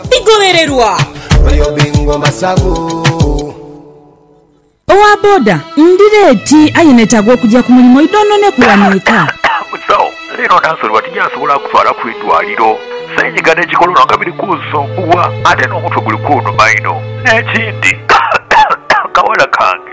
Bigholererwa! Owa boda, Ndi leeti aye neetaaga okugya ku mulimu oidha ononeku wano eka. Musawo, Leero naasoloba tinjaasobola kutwalaku idwaliro. Seenyiga n'ekikolono nga biri kunsumbuwa ate n'omutwe guli kunuma inho. N'ekindi, kawala kange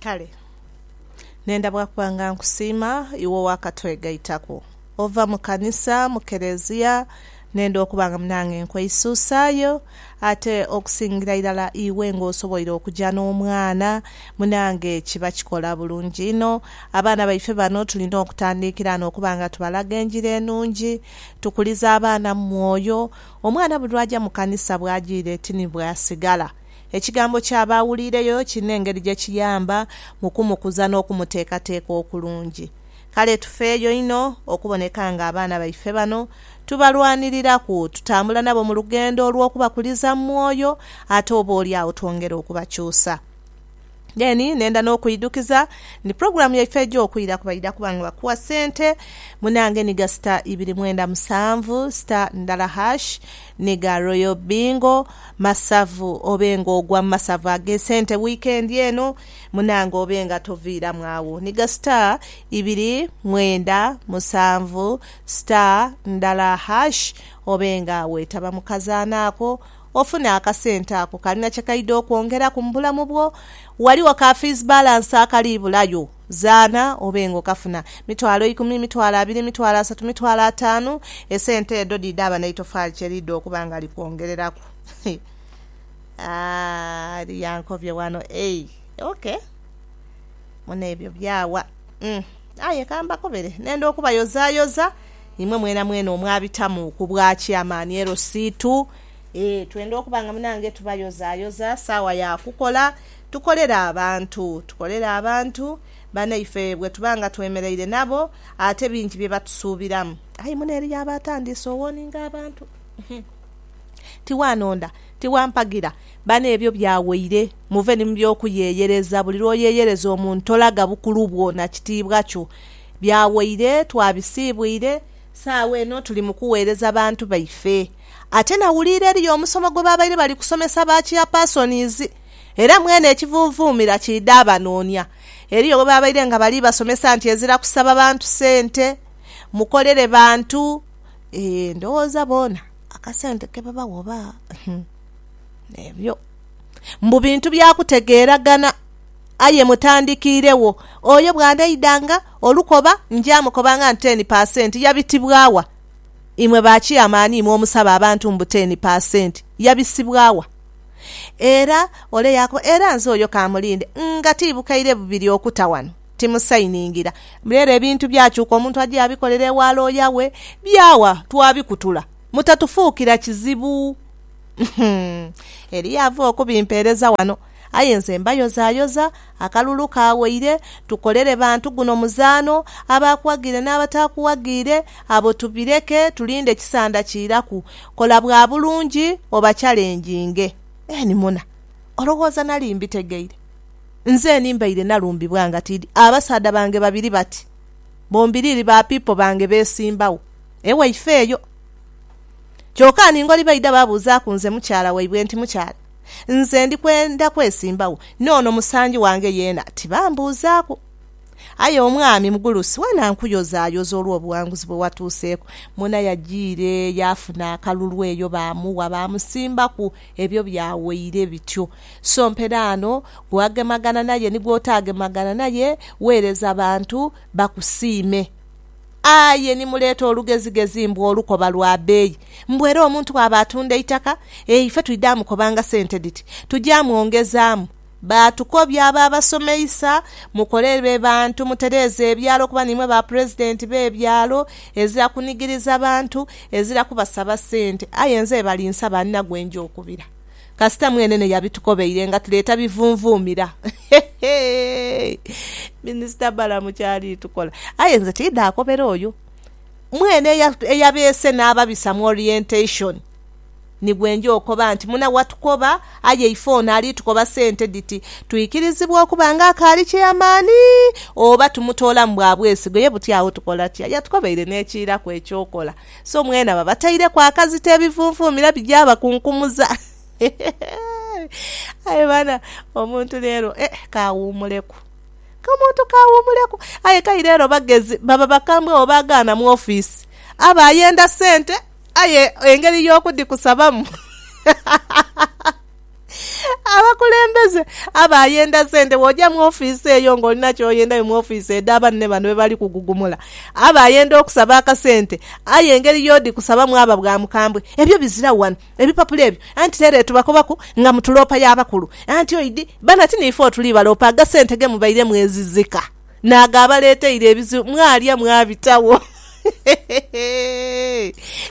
Kale nenda bwa kuba nga nkusiima iwe owakatwegaitaku ova mu kanisa, mu Kelezia, nenda okuba nga nange nkweisuusaayo, ate okusingira irala iwe nga osoboire okuja n'omwana, munange kiba kikola bulungi inho. Abaana baife bano tulina okutandiikira ghano okuba nga tubalaga enjiri enungi. Tukulize abaana mu mwoyo. Omwana buli lwaja mu kanisa bwajiire ti ni bwasigala. Ekigambo kya baawuliireyo kirina engeri gye kiyamba mu kumukuza n'okumuteekateeka okulungi. Kale tufeeyo inho okuboneka ng'abaana baife bano tubalwaniriraku, tutambula nabo mu lugendo olw'okubakuliza mu mwoyo, ate oboolyawo twongere okubakyusa. Then nenda nokuidhukiza nti program yaife eja okwiraku baidha kuba nga bakuwa sente munange niga star ibiri mwenda musanvu star ndala hash niga royal bingo masavu obe nga ogwa mumasavu agesente weekend eno munange obe nga toviramu agho niga star ibiri mwenda musanvu star ndala hash obe nga wetaba mukazanha ako. Ofune akasente ako kalina kye kaidha okwongeraku mu bulamu bwo. Ghaligho ka fiizi balansi akali bulayo, zaana obe nga okafuna. Mitwalo ikumi, mitwalo abiri, mitwalo asatu, mitwalo ataanu, esente edho dhidhaaba n'eitofaali kye liidha okuba nga likwongereraku. Aah, eriyo ankobye ghano. Eei, ok. Mune ebyo byaawa. Umm. Aye ka mbakobere n'enda okubayozaayoza imwe mwenamwena omwabitamu ku bwa Kyamaani Erosiitu. Ee, twenda okuba nga munange tubayozaayoza saawa ya kukola, tukolere abantu, tukolere abantu banaife bwe tuba nga twemeraire nabo, ate bingi bye batusuubiramu. Aye muno eriyo aba atandiise owoninga abantu. Tiwaanonda, tiwampagira. Bano ebyo byawaire. Muve ni mu by'okuyeyereza. Buli lw'oyeyereza omuntu tolaga bukulu bwo na kitiibwa kyo. Byawaire, twabisiibwire, saagho eno tuli mu kuweereza bantu baife. Ate nawuliire eriyo omusomo gwe baabaire bali kusomesa ba Chairpersonizi, era mwene ekivuuvuumira kiidha abanoonia. Eriyo bwe baabaire nga bali basomesa nti ezira kusaba bantu sente, mukolere bantu. Eeh ndowooza boona akasente ke babawa oba? Ebyo mbu bintu bya kutegeeragana. Aye mutandikiiregho, oyo bw'anaidanga olukoba njaamukobanga nti teni pasenti yabitibwa wa? Imwe ba kiyamaani imwe omusaba abantu mbu teni pasenti yabisibwa wa? Era ole yaakoba, era nze oyo ka mulinde nga tiibukaire bubiri okuta wano, timusayiningira. Reero ebintu byakyuka omuntu aja yabikolera ewa looya we, byawa twabikutula. Mutatufuukira kizibu. Eriyo ava okubimpeereza wano, aye nze mbayozayoza, akalulu kaawaire, tukolere bantu guno muzaano, abaakuwagiire n'abataakuwagiire, abo tubireke tulinde kisanda kiiraku. Kola bwa bulungi obakyalenjinge. Eni muna, olowooza nali mbitegeire? Nzeni mbaire nalumbibwa nga tiidi abasaadha bange babiri bati, bombiriri ba piipo bange beesimbagho. Ewe ifeeyo. Kyoka ani ngoli baidha babuuzaaku nze mukyala waibwe nti, Mukyala, nze ndi kwenda kwesimbawo, n'ono musangi wange yeena tibambuuzaaku. Aye omwami mugulusi weena nkuyozaayoza olw'obuwanguzi bwe watuuseeku. Mwona yajiire yaafuna akalulu eyo baamuwa, baamusimbaku ebyo byawaire bityo. So mperaano gwagemagana naye ni gw'otaagemagana naye, weereza bantu bakusiime. Aye ni muleeta olugezigezi mbu olukoba lwa beeyi. Mbu era omuntu bw'aba atunda eitaka, e ife twidha mukobanga sente dhiti, tuja mwongezaamu. Baatukobya abo abasomeisa, mukole be bantu, mutereeze ebyalo kuba niimwe ba pulezidenti b'ebyalo, ezira kunigiriza bantu, ezira kubasaba sente. Aye nze balinsaba nina gwe nja okubira. kasita mwenene yabitukobeire nga tuleeta bivunvuumira. Heheeii! Minisita Balamu ky'ali tukola. Aye nze tiidha akobera oyo mwene eya, eyabeese n'ababisa mu orientation ni gwe nja okoba nti muna watukoba, aye ife ono ali tukoba sente dhiti twikirizibwa okuba nga akaali kyeamaani oba tumutoolamu bwa bwesigwa. Ye buti agho tukola tutya? Yatukobeire n'ekiiraku eky'okola. So mwena babataireku akazito ebivunvumira bijabakunkumuza aye bana omuntu lero eh, kawumuleku omuntu kawumuleku aye kai lero bagezi baba bakambwe oba agaana mu office aba ayenda sente aye engeri yokudikusabamu Abakulembeze aba yenda sente bwoja mu ofiisi eyo nga olina kyoyendayo mu ofiisi edha banne bano bebali kugugumula. Aba yenda okusaba akasente aye engeri yodi kusabamu aba bwa mukambwe. Ebyo biziragho wano ebipapula ebyo anti lero etubakobaku nga mutuloopa ya bakulu anti oidi bano ati niife otuli baloopa agasente gemubaire mwezizika. N'ago abaleeteire ebizibu mwalya mwabitagho.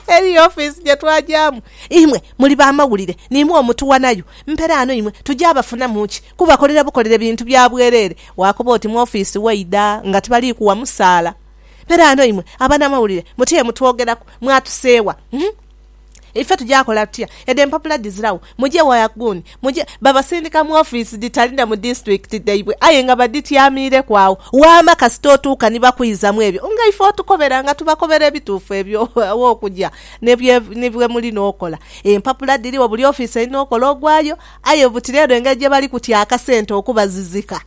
Eriyo ofiisi gye twagyamu, imwe muli baamawulire niimwo omutuwanayo. Mperaano imwe tugya abafunamu ki? Kubakolera bukolere bintu bya bwereere. Waakoba oti mu ofiisi waidha nga tibali kuwa musaala. Mperaano imwe abanamawulire muti emutwogeraku, mwatuseewa? Ife tugya kola tutya? Edho empapula dhiziragho. Mugye wa Yaguuni. Mugye. Babasindika mu ofiisi dhitali na mu disiturikiti dhaibwe aye nga badhityamiireku agho. Waama kasita otuuka ni bakuizamu ebyo nga ife otukobera nga tubakobera ebituufu ebyo aw'okugya ni bwe muli n'okola. Empapula dhirigho buli ofiisi erina okola ogwayo aye butira eno engeri gye bali kutya akasente okubazizika.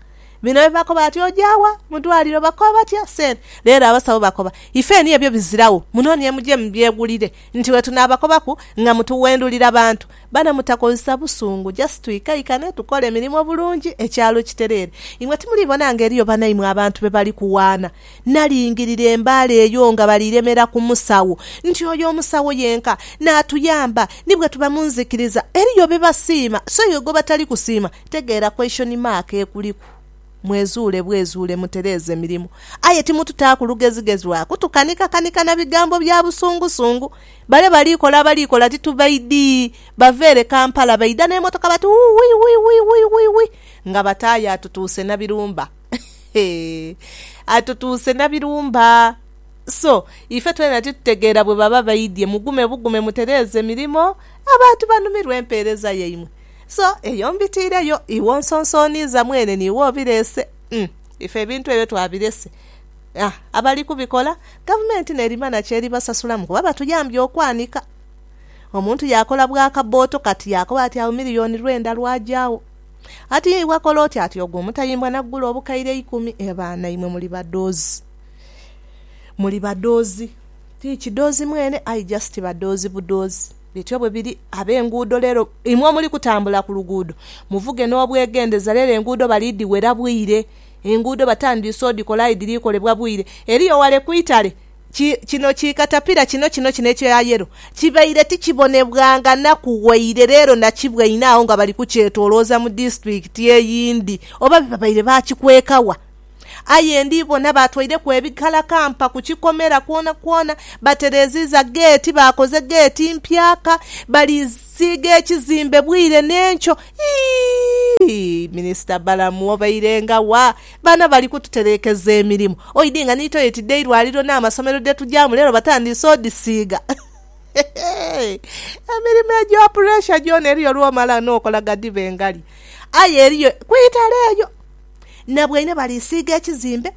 Bino bye bakoba bati, Oja wa? Mu dwaliro. Bakoba batya? Sente. Leero abasawo bakoba, Ifeeni ebyo biziragho, munoonie muje mubyegulire. Nti wetunaabakobaku nga mutuwendulira bantu. Bana mutakozesa busungu, just twikaikane, tukole emirimo bulungi, ekyalo kitereere. Imwe timulibona nga eriyo banaimwe abantu be bali kuwaana? Nalingirira embaale eyo nga bali remera ku musawo. Nti oyo omusawo yenka naatuyamba. Ni bwetuba mu nzikiriza, eriyo bye basiima, so iwe gwe batali kusiima, Kutegeera question mark ekuliku. Mwezuule bwezuule mutereeze emirimu. Aye timututaaku lugezigezi lwa kutukanikakanika na bigambo bya busungusungu. Bale bali kola abali kola titubaidhi. Bava ere Kampala baidha n'emotoka bati Uwii wii wii wii wii wii nga bataayo atutuuse na birumba. Heehee atutuuse na birumba. So, ife twena titutegeera bwe baba baidhye. Mugume bugume mutereeze mirimo. Abantu banumirwe empeereza yaimwe. So eyo mbitiire yo, iwe onsonsooniiza mwene n'iwe obireese. Umm, ife ebintu ebyo twabirese. Ha, abali kubikola, Gavumenti n'erimana ky'eribasasulamu kuba batuyambye okwanika. Omuntu yaakola bwa kabbooto kati yaakoba ati agho miriyoni lwenda lwaja agho. Ati ye iwe kola oti ati ogwo omutayimbwa n'agugula obukaire eikumi. E baana imwe muli badoozi. Muli badoozi. Ti kidoozi mwene aye just badoozi budoozi. Bityo bwe biri ab'enguudo leero. Imwe omuli kutambula ku luguudo, muvuge n'obwegendhereza. Leero enguudo bali dhiwera bwire. Enguudo batandiise odhikola aye dhiri kolebwa bwire. Eriyo wale ku itale, ki, kino ki katapira kino, kino, kino ekya yelo, kibaire tikibonebwanga naku waire, leero nakibwaine agho nga bali kukyetoolooza mu disitulikiti eyindi. Oba babaire baakikweka wa? Aye ndi bona baatwaireku ebikalakampa ku kikomera kwonakwona, batereeziiza geeti, baakoze geeti mpyaka, balisiiga ekizimbe bwire n'enkyo. Ii, Minisita Balamu obairenga wa? Bano bali kututereekeza emirimu. Oidhi nga ni toyeti dh'eirwaliro n'amasomero dhe tugyamu leero batandiise odhisiiga. Hehe! Emirimu egya puresha gyona eriyo lw'omala n'okola ghadhibe ngali. Aye eriyo ku itale eyo. na bweine balisiiga ekizimbe,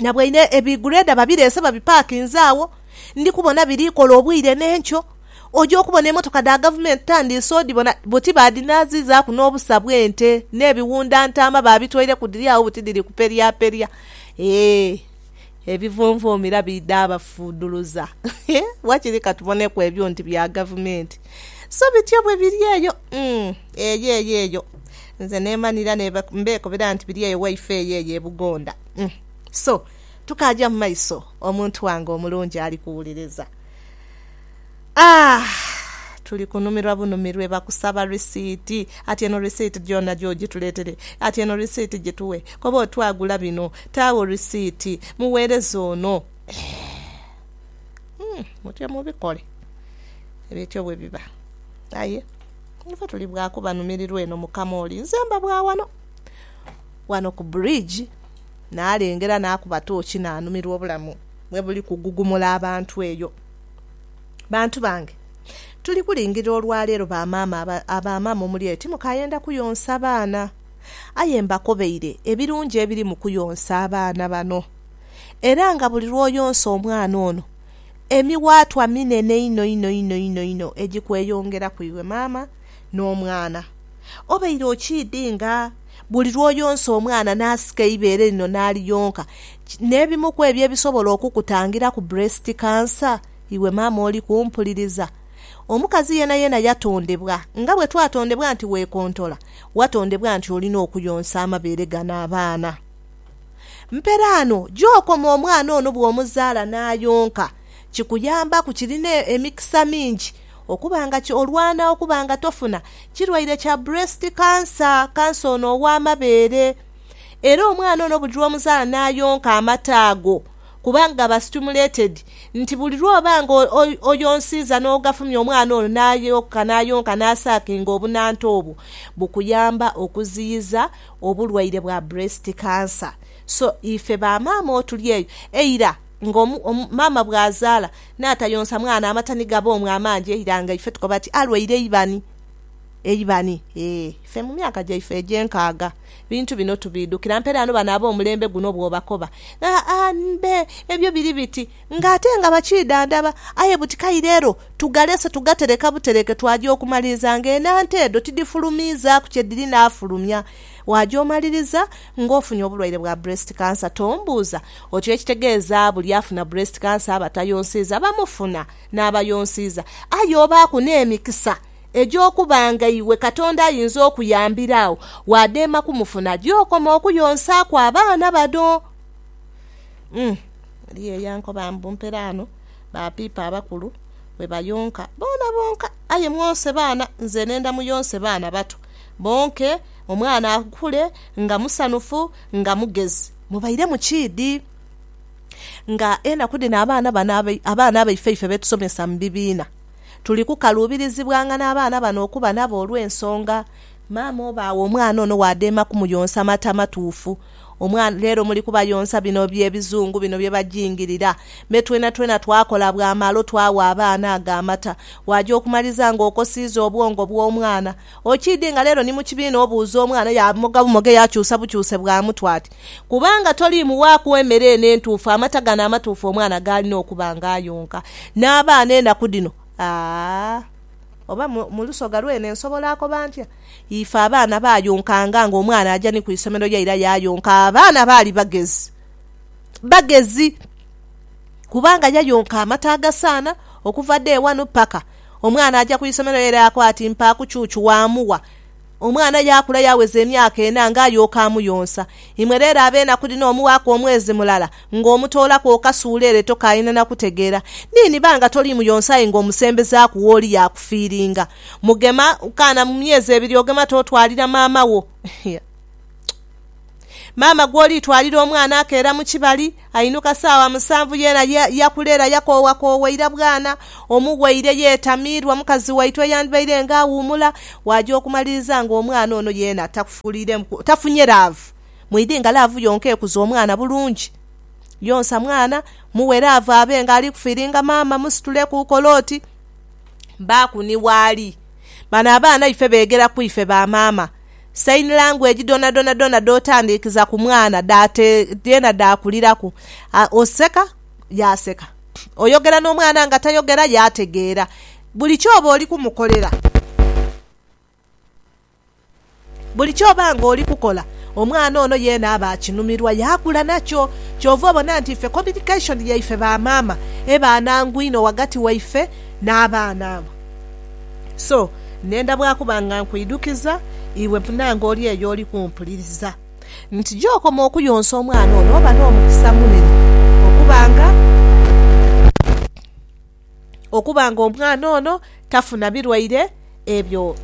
na bweine ebigureda babireese babipakinze agho, ndi kubona biri kola obwire n'enkyo. Oja okubona emotoka dha Gavumenti tandiise odhibona buti baadhinaazizaaku n'obusa bw'ente, n'ebiwunda ntaama baabitoire ku dhiri agho buti dhiri kuperyaperya. Eeh! ebivunvumi era biidha bafuudhuluza. Wakiri ka tuboneku ebyo nti bya gavumenti. So bityo bwe biri eyo, umm, eyo eyo eyo. Nze neemanhira ne mbeekobera nti biri eyo waife eyo eyo e Bugonda. Umm. So, tukaaja mu maiso, omuntu wange omulungi ali kuwuliriza. Aah! Tuli kunumirwa bunumirwe bakusaba risiiti. Ati eno risiiti gyona gy'ogituleetere. Ati eno risiiti gitughe. Koba oti agula bino. Taagho risiiti. Mugheereza ono. Eeh! Umm! Mutyo mubikole. Bityo bwe biba. Aye ife tuli bwa kubanumirirwa eno mu kamooli. Nze mba bwa wano. Wano ku bridge, naalengera naakuba tooki naanumirwa obulamu bwe buli kugugumula abantu eyo. Bantu bange, tuli kulingirira olwa leero ba maama a ba maama omuli eyo timukayenda kuyonsa baana. Aye mbakobeire ebirungi ebiri mu kuyonsa abaana bano. Era nga buli lw'oyonsa omwana ono, emiwaatwa minene inho inho inho inho inho egikweyongeraku iwe maama n'omwana. Obaire okiidinga? Buli lw'oyonsa omwana n'asika eibeere lino n'aliyonka, n'ebimu kw'ebyo ebisobola okukutangira ku breast cancer, iwe maama oli kumpuliriza. Omukazi yeenayeena yatondebwa nga bwe twatondebwa nti weekontola, watondebwa nti olina okuyonsa amabeere gano abaana. Mperaano gy'okoma omwana ono bw'omuzaala n'ayonka, kikuyambaku, kirina emikisa mingi. Okuba nga ky'olwana okuba nga tofuna kirwaire kya breast cancer, kansa ono ow'amabeere. Era omwana ono buli lw'omuzaala n'ayonka amata ago kuba gaba stimulated nti buli lw'oba nga oyonsiiza n'ogafumya omwana ono n'ayonka n'ayonka n'asaakinga obunanta obwo bukuyamba okuziyiza obulwaire bwa breast cancer. So ife ba maama otuli eyo eira. nga maama bw'azaala n'atayonsa mwana amata ni gaboomu amangi eira nga ife tukoba ti alwaire eibani. Eibani? Ee, ife mu myaka gyaife egy'enkaaga ebintu bino tubiidhukira. Mperaano bano ab'omulembe guno bw'obakoba, aa, mbe ebyo biri biti ng'ate nga bakiidhandhaba. Aye buti kaire ero tugalese tugatereka butereke twaja okumaliriza ng'enhanto edho tidhifulumiizaaku kye dhiri naafulumya. Waaja omaliriza. Ng'ofunye obulwaire bwa breast cancer tombuuza otyo ekitegeeza buli afuna breast cancer abatayonsiiza bamufuna n'abayonsiiza. Aye obaaku n'emikisa egy'okuba nga iwe Katonda ayinza okuyambira agho waadema kumufuna gy'okoma okuyonsaaku abaana bano. Umm eriyo eyankoba mbu mperaano ba piipo abakulu bwe bayonka boona bonka aye mwonse baana nze nenda muyonse baana bato bonke, omwana akule nga musanhufu, nga mugezi. Mubairemu kiidhi. Nga enaku dhino abaana bano abaana baife ife be tusomesa mu bibiina, tuli kukaluubirizibwanga n'abaana bano okuba nabo olw'ensonga maama oba agho omwana ono waadheema kumuyonsa mata matuufu. Omwana, leero muli kubayonsa bino bye bizungu bino bye bajingirira. Me twenatwena twakola bwamalo twagha abaana ago amata. Waaja okumaliriza nga okosiiza obwongo bw'omwana. Okiidhi nga leero ni mu kibiina obuuza omwana, yaamoga bumoge yaakyusa bukyuse bwa mutwe ati, Kubanga toliimuwaaku emere eno entuufu, amata gano amatuufu omwana g'alina okuba nga ayonka. N'abaana enaku dhino, aah! Oba mu Lusoga lwene nsobola akoba ntya? Ife abaana baayonkanga nga omwana aja ni ku isomero ye era yaayonka. Abaana baali bagezi. Bagezi! Kubanga yayonka amata agasaana, okuva day wanu paka. Omwana aja ku isomero ye era yakoba ati mpaaku chuchu waamuwa. Omwana yaakula yaaweza emyaka ena nga ayooka amuyonsa. Imwe reero ab'enaku dhino omuwaaku omwezi mulala, Nga omutoolaku okasuula ere tokaayina na kutegeera. Ni niba nga toliimu yonsa aye nga omusembezaaku w'oli yaakufiiringa. Mugema kaana mu myezi ebiri ogema t'otwalira maama wo. Iya. Maama gw'oliitwalira omwana akeera mu kibali, ainuka saawa musanvu yeena ya, yakulera yakoowakoowa ira bwana, omuwaire yeetamiirwa mukazi waitu eyandibaire nga awuumula, waaja okumaliriza nga omwana ono yeena takufuuliiremuku, tafunye laavu. Mwidhi nga laavu yonka ekuza omwana bulungi. Yonsa mwana, mughe laavu abe nga ali kufiiringa maama, musitule ku kole oti. Baaku ni waali. Bano abaana ife beegera ku ife ba maama. Saini langweji dhonadhona dhona dh'otandiikiza ku mwana dhaate dheena dhaakuliraku. Oseka, yaaseka. Oyogera n'omwana nga tayogera, yaategeera. Buli kyoba oli kumukolera. Buli ky'oba ng'oli kukola, omwana ono yeena aba akinumirwa yaakula nakyo. Kyova obona nti ife communication yaife ba maama eba nhangu inho ghagati waife n'abaana abo. So, ndhenda bwa kuba nga nkwidhukiza, iwe munaange oli eyo oli kumpuliriza, nti gy'okoma okuyonsa omwana ono oba n'omukisa munene okuba nga. okuba nga omwana ono tafuna birwaire ebyo,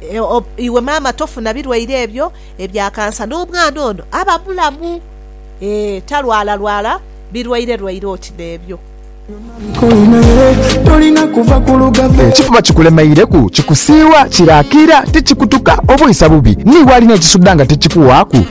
iwe maama tofuna birwaire ebyo ebya kansa, n'omwana ono aba mulamu, ee, talwalalwala birwairerwaire oti n'ebyo. Ekifuba kikulemeireku, kikusiiwa, kiraakira, tikikutuka, obwisa bubi, ni w'ali n'ekisudha nga tikikuwaaku.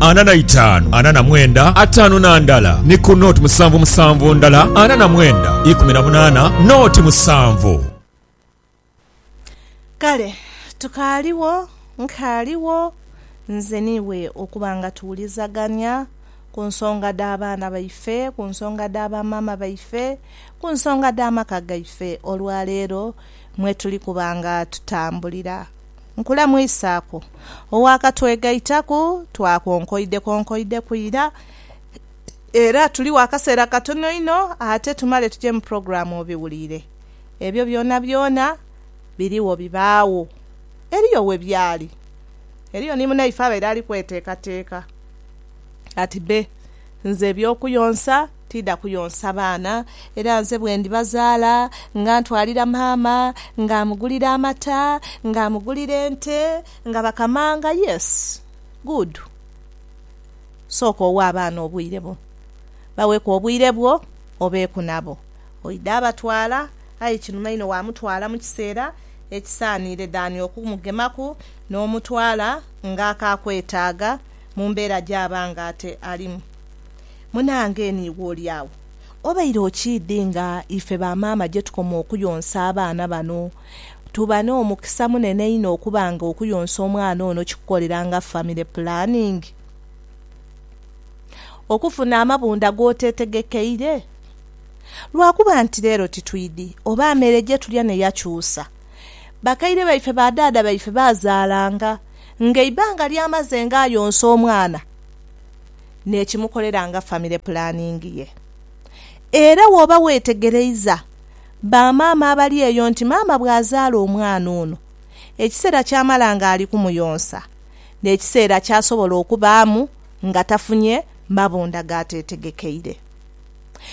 ana na itaanu, ana na mwenda, ataanu na ndala, ni ku nooti musanvu musanvu ndala, ana na mwenda, ikumi na munaana, nooti musanvu. Kale tukaaligho, nkaaligho, nze n'iwe okuba nga tuwulizagania ku nsonga dh'abaana baife, ku nsonga dha bamaama baife, ku nsonga dh'amaka gaife olwaleero mwe tuli kuba nga tutambulira. Nkulamwisaaku ow'akatwegaitaku. Twakonkoidekonkoideku ira, era tuligho akaseera katono inho ate tumale tuje mu pulogulaamu obiwulire. Ebyo byonabyona birigho bibaagho. Eriyo we byali. Eriyo ni munaife abaire ali kweteekateeka. Ati, Be, nze eby'okuyonsa Tiidha kuyonsa baana, era nze bwe ndibazaala, nga ntwalira maama, nga amugulira amata, nga amugulira ente, nga bakamanga. Yes, good. Sooka owe abaana obwire bo. Baweku obwire bwo, obeeku nabo. Oidha abatwala, aye kinuma inho waamutwala mu kiseera ekisaaniire than okumugemaku n'omutwala nga akaakwetaaga mu mbeera gy'aba nga ate alimu. Munaange niiwe oli agho, obaire okiidhi nga ife ba maama gye tukoma okuyonsa abaana bano? Tuba n'omukisa munene inho okuba nga okuyonsa omwana ono kikukolera nga famire pulaningi, okufuna amabundha g'oteetegekeire. Lwa kuba nti leero titwidhi oba mere gye tulya ne yakyusa. Bakaire baife ba dhaadha baife baazaalanga ng'eibbanga ly'amaze ng'ayonsa omwana. n'ekimukolera nga famire pulaningi ye. Era wooba weetegereiza ba maama abali eyo nti maama bw'azaala omwana ono, ekiseera ky'amala ng'ali kumuyonsa n'ekiseera ky'asobola okubaamu nga tafunye mabunda g'ateetegekeire.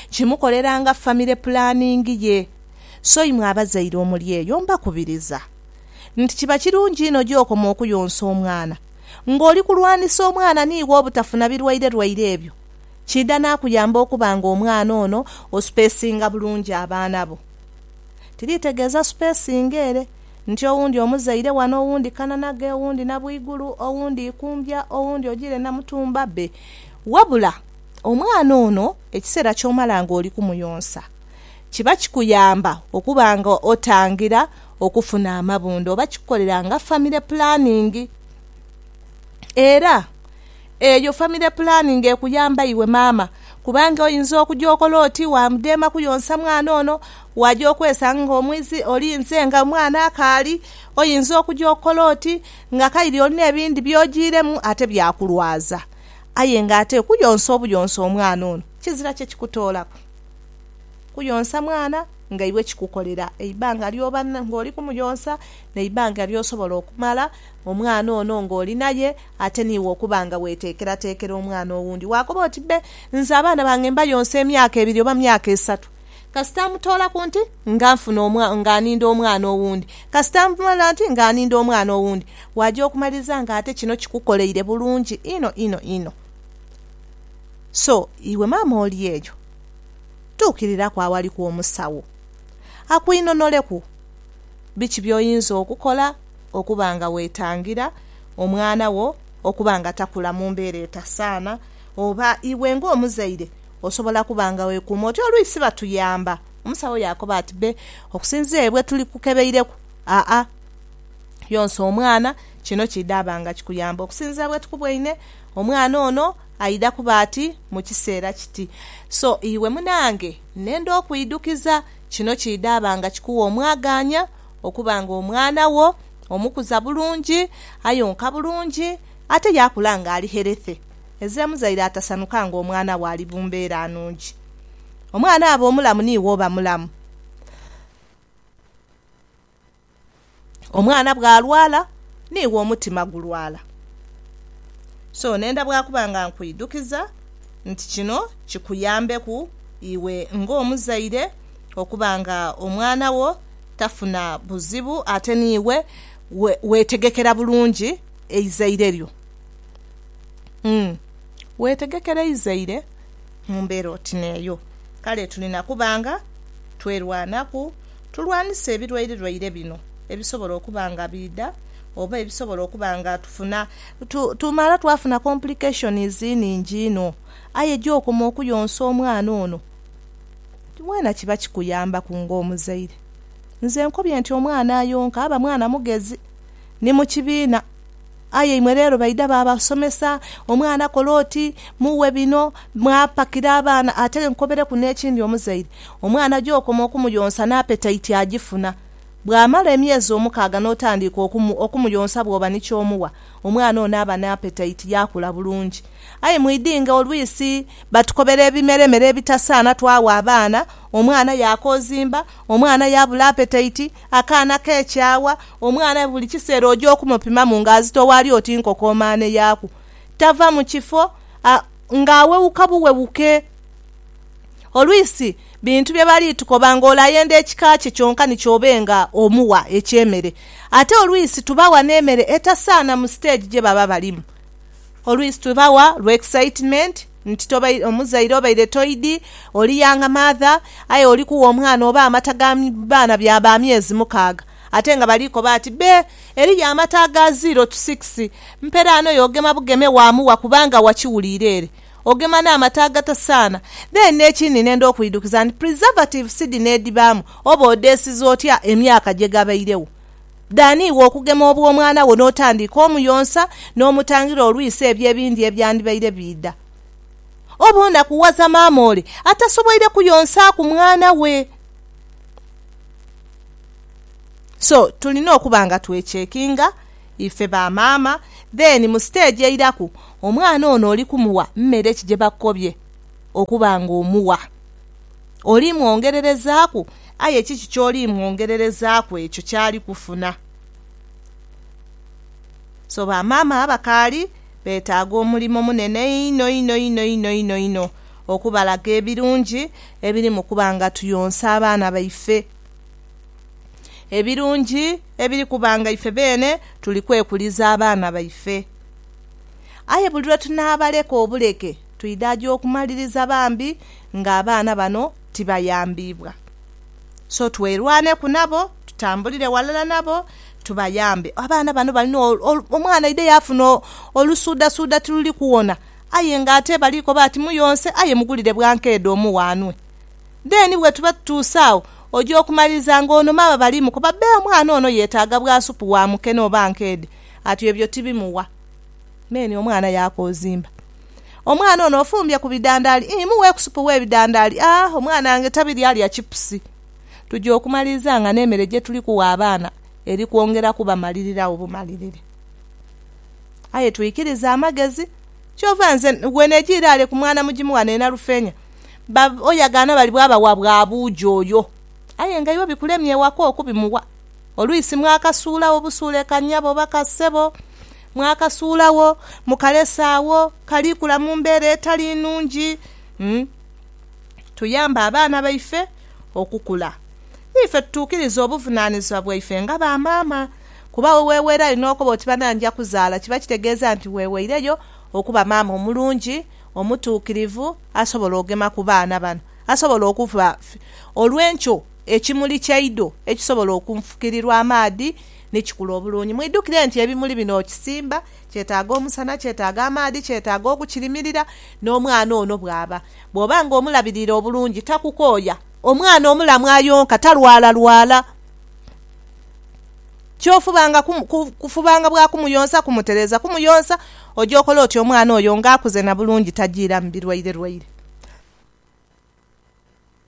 Kimukolera nga famire pulaningi ye. So imwe abazaire omuli eyo mbakubiriza nti kiba kirungi inho gy'okoma okuyonsa omwana, ng'oli kulwanisa omwana ni iwe obutafuna birwairerwaire ebyo, kiidha naakuyamba okuba ng'omwana ono osupeesinga bulungi abaana bo. Tiriitegeeza supeesinga ere nti owundi omuzaire wano, owundi Kananage, owundi Nabwigulu, owundi Ikumbya, owundi ojiire Namutumba be, wabula omwana ono ekiseera ky'omala ng'oli kumuyonsa kiba kikuyamba okuba ng'otangira okufuna amabunda oba kikukolera nga famire pulaningi. Era eyo famire pulaningi ekuyamba iwe maama kubanga oyinza okuja okola oti waamudheema kuyonsa mwana ono, waaja okwesanga nga omwizi olinze nga omwana akaali, oyinza okuja okola oti nga kaire olina ebindi by'ojiiremu ate byakulwaza. Aye nga ate kuyonsa obuyonsa omwana ono kizira kye kikutoolaku kuyonsa mwana. Nga iwe kikukolera eibanga ly'oba ng'oli kumuyonsa n'eibanga ly'osobola okumala omwana ono ng'oli naye ate n'iwe okuba nga weeteekerateekera omwana owundi, waakoba oti, Bbe, nze abaana bange mbayonsa emyaka ebiri oba myaka esatu. Kasita mmutoolaku nti nga nfuna omwa, nga aninda omwana owundi, kasita mmala nti nga aninda omwana owundi, waaja okumaliriza ng'ate kino kikukoleire bulungi inho inho inho. So, iwe maama oli eyo. tuukiriraku awaliku omusawo akwinonoleku biki by'oyinza okukola okuba nga weetangira omwana wo okuba nga takula mu mbeera etasaana. Oba iwe ng'omuzaire osobola kuba nga weekuuma oti, Oluisi batuyamba. Omusawo yaakoba ati, Be, okusinziira ere bwe tulikukebeireku, aa, yonsa omwana. Kino kiidha ba nga kikuyamba okusinziira bwe tukubweine omwana ono Aidha kuba ati mu kiseera kiti. So iwe munange, nenda okwidhukiza, kino kiidhaba nga kikuwa omwagaanya okuba nga omwana wo omukuza bulungi, ayonka bulungi, ate yaakula nga ali herethy. Eeze muzaire atasanuka nga omwana we ali bu mbeera nungi. Omwana aba omulamu niiwe oba mulamu. Omwana bw'alwala, n'iwe omutima gulwala. So nenda bwa kuba nga nkwidhukiza nti kino kikuyambeku iwe ng'omuzaire okuba nga omwana wo tafuna buzibu ate n'iwe weetegekera bulungi eizaire lyo. Umm. Weetegekera eizaire Mu mbeera oti n'eyo, kale tuli na kuba nga twerwanaku tulwanise ebirwairerwaire bino ebisobola okuba nga biidha oba ebisobola okuba nga tufuna. Tumala twafuna complications nhingi inho. Aye gy'okoma okuyonsa omwana ono, weena kiba kikuyambaku ng'omuzaire. Nze nkobye nti omwana ayonka aba mwana mugezi ni mu kibiina. Aye imwe leero baidha baabasomesa, omwana kola oti, mughe bino, mwapakira abaana. Ate nkobeleku n'ekindi omuzaire, omwana gy'okoma okumuyonsa n'apetaiti agifuna. Bw'amala emyezi omukaaga n'otandiika okumuyonsa bw'oba ni ky'omuwa, omwana ono aba n'apetaiti yaakula bulungi. Aye mwidhinge olwisi batukobera ebimeremere ebitasaana twawa abaana, omwana yaakoozimba, omwana yaabula apetaiti. Akaana k'ekyawa, omwana buli kiseera oja okumupimamu ng'azitowa ali oti nkokomaane yaaku. Tava mu kifo a ng'awewuka buwewuke. Olwisi bintu bye bali tukoba ng'olayenda ekika kye kyonka ni ky'obe nga omuwa eky'emere. Ate olwisi tubawa n'emere etasaana mu siteegi gye baba balimu. Olwisi tubawa lwa excitement. Nti tobaire omuzaire obaire toidhi oli yanga maadha aye oli kugha omwana oba amata ga baana bya ba myezi mukaaga ate nga bali koba ati be eriyo amata aga ziro tu sikisi mperaano y'ogema bugeme waamugha kubanga wakiwuliire ere ogema n'amata agatasaana then n'ekindi nenda okwidhukiza nti preservative si dhino edhibaamu oba odheesiza otya emyaka gye gabairegho Dhaani iwe okugema obw'omwana wo n'otandiika omuyonsa n'omutangira olwisi ebyo ebindi ebyandibaire biidha. Oba onakughaza maama ole atasoboire kuyonsaaku mwana we. So, tulina okuba nga twechekinga ife ba maama then mu stage eiraku omwana ono oli kumugha mmere ki gye bakukobye okuba nga omuwa. Oli mwongererezaaku, aye kiki ky'oli mwongererezaaku ekyo ky'ali kufuna? So bamaama abakaali beetaaga omulimo munene inho inho inho inho inho inho okubalaga ebirungi ebiri mu kuba nga tuyonsa abaana baife. Ebirungi ebiri kuba nga ife beene tuli kwekuliza abaana baife. Aye buli lwe tunaabaleka obuleke, Twidha gya okumaliriza bambi nga abaana bano tibayambiibwa. So twerwaneku nabo, tutambulire walala nabo tubayambe. Abaana bano balina, omwana aidha yaafuna olusuudhasuudha tiluli kuwona aye nga ate bali koba ati muyonse aye mugulire bwankeedha omughe anwe. Then bwetuba tutuuse agho, oja okumaliriza nga ono maama bali mukoba bbe omwana ono yetaaga bwa supu wa mukene oba nkeedhe, ati ebyo tibimuwa. Then omwana yaakoozimba. Omwana ono ofumbye ku bidandaali ii, mughe ku supu w'ebidandaali a, omwana wange tabirya alya chipusi. Tuja okumaliriza nga n'emere gye tuli kugha abaana eri kwongera kubamaliriregho bumalirire. Aye twikirize amagezi. Kyova nze bwenegya iraale ku mwana mugimu ghano e Nalufeenya, ba oya gaana bali bwabawa bwa buugi oyo. Aye nga iwe bikulemye ewaka okubimuwa. Olwisi mwakasuulagho busuule ka nnyabo oba ka ssebo. mwakasuulagho, mukalese agho kali kula mu mbeera etali nnungi. Tuyambe abaana baife okukula. Niife tutuukiriza obuvunaanizibwa bwaife nga ba maama. Kuba we weweerayo n'okoba oti bana nja kuzaala, kiba kitegeeza nti weweireyo okuba maama omulungi, omutuukirivu, asobola ogema ku baana bano, asobola okuba olw'enkyo ekimuli kyaidho ekisobola okunfukirirwa amaadhi ni kikula obulungi. Mwidhukire nti ebimuli bino okisimba, kyetaaga omusana, kyetaaga amaadhi, kyetaaga okukirimirira n'omwana ono bw'aba. Bw'oba nga omulabirira obulungi takukooya. Omwana omulamu ayonka, talwalalwala. Ky'ofubanga kufubanga bwa kumuyonsa kumutereeza kumuyonsa, oja okola oti omwana oyo nga akuze na bulungi tajiiramu birwairerwaire.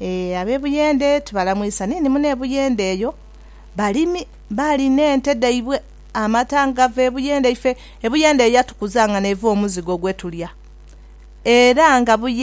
Ee, ab'e Buyende tubalamwisa ni ni muno e Buyende eyo. Balimi, baali n'ente dhaibwe, amata nga gava e Buyende. Ife e Buyende eyo yatukuza nga n'eva omuzigo gwetulya. Era nga Buyende.